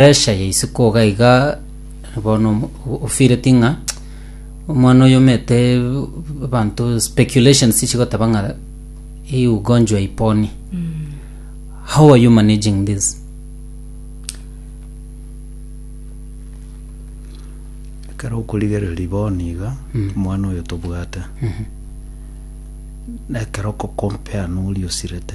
Pressure ya isiko iga iga bono omo- o- ofeeleti ng'a omwana oyo omete abanto speculations chigoteba ng'a hii ugonjwa iponi how are you managing this ekero okorigereria bono iga omwana oyo tobwate na ekero okokompea noria osirete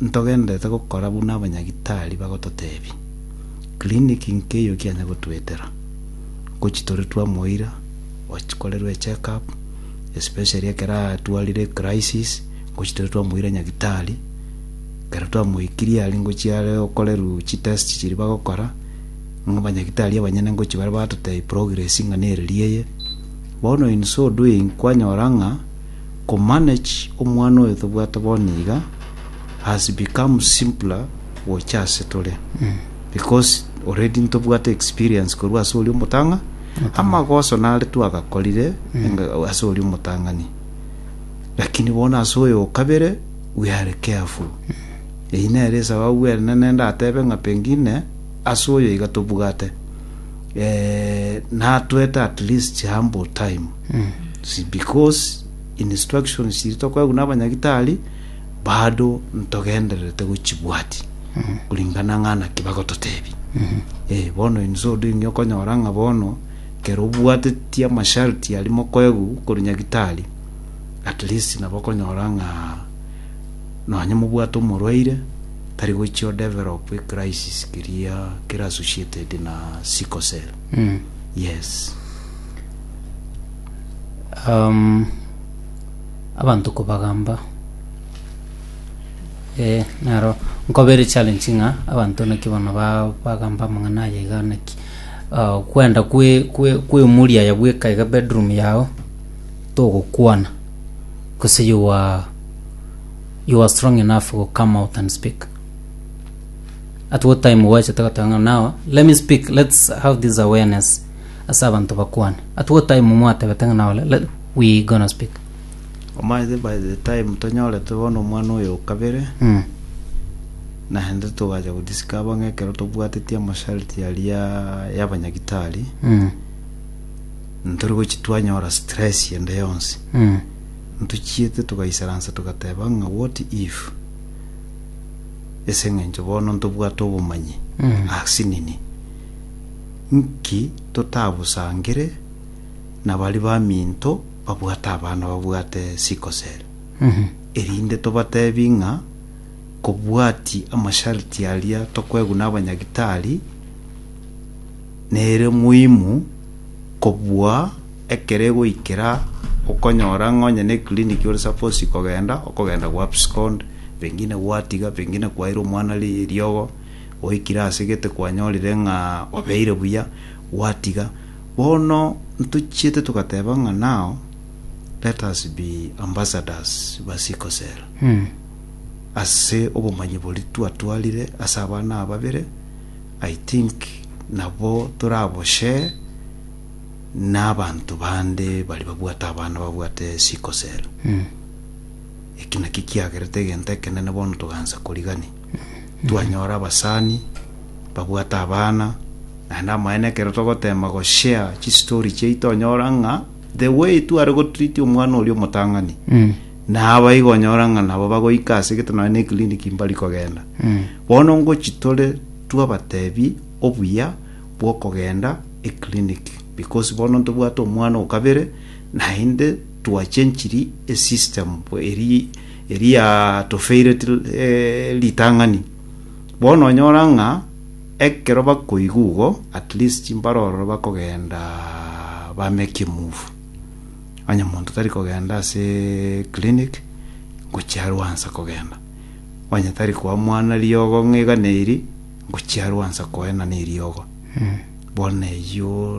Ntogenderete gokora buna abanyagitari bagototebia. Clinic nkeyio kianya gotwetera. Ngochi tore twamoira, okorerwe check up, especially ekero atwarire crisis, ngochi tore twamoira nyagitari, ekero twamoikirie aria ngochi are okoreru chi test chiria bagokora, ng'a abanyagitari abanyene ngochi bare batotebia progress ng'a neriria eye. Bono in so doing kwanyora ng'a. Ko manage omwana oyo tobwate bono iga has become simpler gocha ase tore because already ntobwate experience korwa ase oria omotang'a amagoso nare twagakorire enga- ase oria omotang'ani lakini bono ase oyo okabere we are careful eyio nere esababu enene ndatebe ng'a pengine ase oyo iga tobwate eh, natwete at least humble time Because instructions chiria tokoegwa n'abanyagitari bado ntogendererete gochibwatia kuringana ng'a naki bagototebia. Eh, bono inse ode inge okonyora ng'a bono kero obwatetie amasharti aria mokoegwa korwa nyagitari, at least nabo okonyora ng'a nonye mobwate omorwaire tari gochia o develop a crisis keria kere associated na sickle cell. Yes. Um, abantu kobagamba eh, naro nkobere challenge ng'a abanto naki bono ba- bagamba amang'ana aya iga naki Ah, kwenda kwe- kwe- kwemuria ya bweka iga bedroom yao togokwana gose you are, you are strong enough go come out and speak at what time gwachete goteba ng'a now let me speak let's have this awareness ase abanto bakwane. At what time mwatebete ng'a nore? Let, we gonna speak. Omanyete by the time tonyorete bono omwana oyo o kabere, Mm. naende togacha godiskaba ng'a ekero tobwateti amasharti aria y'abanyagitari, Mm. ntori gochi twanyora stress ende yonsi. Mm. Ntochiete togaisaransa togateba ng'a what if ase eng'encho bono ntobwate obomanyi Mm. asinini. Nki totabusangire na baria baminto babwate abana babwate sickle cell, erinde tobatebi ng'a kobwati amasharti aria tokoegwa na abanyagitari, nere muhimu kobua ekero egoikera okonyora ng'a onye ne clinic ore supposed kogenda, okogenda gwa abscond, pengine gwatiga, pengine kwaira omwana riogo. Goikire ase gete kwanyorire ng'a obeire buya, gwatiga. Bono ntochiete togateba ng'a now let us be ambassadors ba sickle cell. Ase obomanyi boria twatwarire ase abana ababere, I think nabo torabo share na abanto bande baria babwate abana babwate sickle cell. Eki nakio kiagerete egento ekenene bono togaansa korigania. Twanyora abasani babwate abana, naende amaene ekero togoteema goshare chistory chiaito onyora ng'a the way tware gotreat omwana oria omotang'ani naba igo onyora ng'a nabo bagoika ase egete nonye na eclinic mbari kogenda bono ngochi tore twabatebi obuya bwokogenda eclinic because bono ntobwate omwana okabere naende twachenchiri esystem eria eria tofeire ritang'ani. Bono onyora ng'a ekero bakoigwa igo, at least mbare ororo bakogenda bameki move. Onye monto tari kogenda ase clinic, ngochia arwansa kogenda. Onye tari koa mwana riogo ng'a igana eri, ngochia arwansa koena neriogo. Bono eyio